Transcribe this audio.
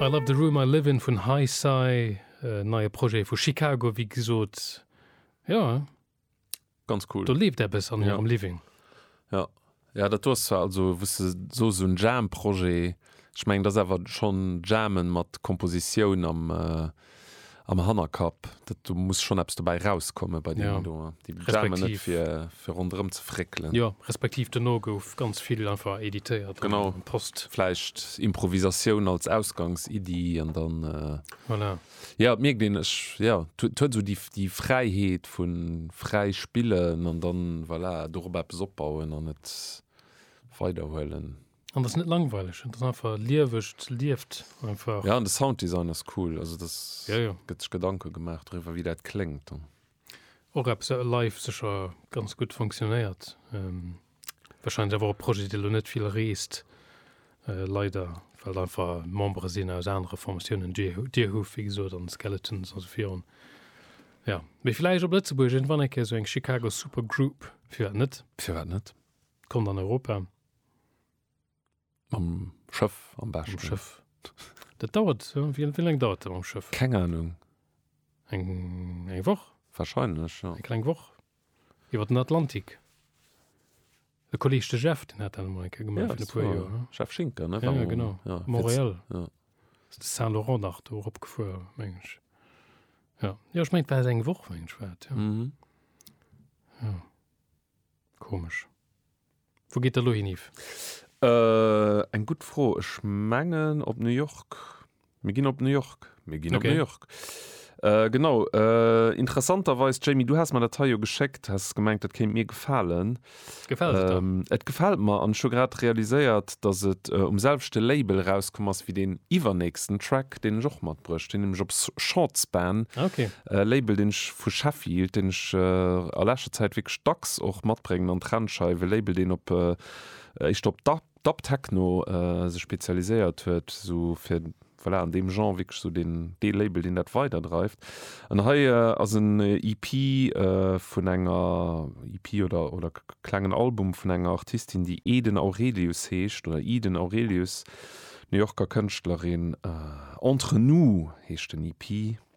I Love the Room I Live In vun Hi-Sye, e neie Projet vu Chicago, wéi gesot. Jo, Ganz cool. do leeft eppes an hirem Living. Jo, jo, dat do ass zwar, also wou s de soos esou en Jam-Projet, ech mengen, dat ass awer schonn Jammen mat Kompositioun am. am Hannerkapp, dat do muss schonn eppes dobäi erauskommen bei deenen do, déi brauche mer net fir fir ronderëm ze fréckelen. Jo, respektiv dono gouf ganz vill einfach editéiert an an d'Post. Genau, vläicht Improvisatioun als Ausgangsiddi an dann, voilà. Jo, et mierkt een, ech, jo, et huet esou déi déi Fräiheet vu fräi spillen an dann, voilà, dorop eppes opbauen an et weiderhuelen. An das net langweileg, das einfach lieweg, das lieft einfach. Ja an de Sounddesign ass cool, also das ja, ja. gëtt sech Gedanke gemaach driwwer wéi dat kléngt dann. Och eppes wat live sécher ganz gutt fonctionnéiert. Ähm, wahrscheinlich awer op Projet dee lo net vill reest äh, leider well einfach Membere sinn aus anere Formatiounen Deerhoof wéi gesot an Skeletons also virun. Ja méi vläicht op Lëtzebuerg en wann enke so eng Chicago Supergroup fir net. Fir wat net? Kommt an Europa. Mam Schëff am besten. Am Schëff. Dat dauert, wéi laang dauert dat mam Schëff? Keng Ahnung. Eng, eng Woch? Wahrscheinlech, ja. Eng kleng Woch. Iwwer den Atlantik. E Kolleeg, de Jeff, den hat dat emol eng Kéier gemaach, fir e puer Joer. Ja, Jeff Schinker, ne? Ja, genau. Ja. Montréal. Ja. Ass de Saint-Laurent nach do eropgefuer, meng ech. Ja. Jo, ech mengen, et war esou eng Woch, meng ech, war et, ja. Mhm. Ja. Komesch. Wou geet Der elo hin, Yves? Eng gutt Fro. Ech mengen op New York. Mir ginn op New York. Mir ginn op New York. Genau. Interessanterweis, Jamie, du has mer dat hei jo geschéckt, has gemengt, dat kéint mir gefalen. Gefält et der? Et gefält mer. An ech hu grad realiséiert, datt et um selwechte Label erauskomm ass wéi deen iwwernächsten Track, deen ech och matbruecht hunn, nämlech op Shortspan. Ah, okay. E Label, deen ech vu Sheffield, deen ech a leschter Zäit wierklech dacks och matbréngen an d'Rennscheif. E Label, deen op éischter op Dub-Techno sech spezialiséiert huet, esou fir, voilà, an deem Genre wierklech esou deen, dee Label, deen dat weiderdreift. An hei ass en EP vun enger, EP oder, oder klengen Album vun enger Artistin, déi Eden Aurelius heescht, oder Eden Aurelius, New Yorker Kënschtlerin. Entre nous heescht den EP.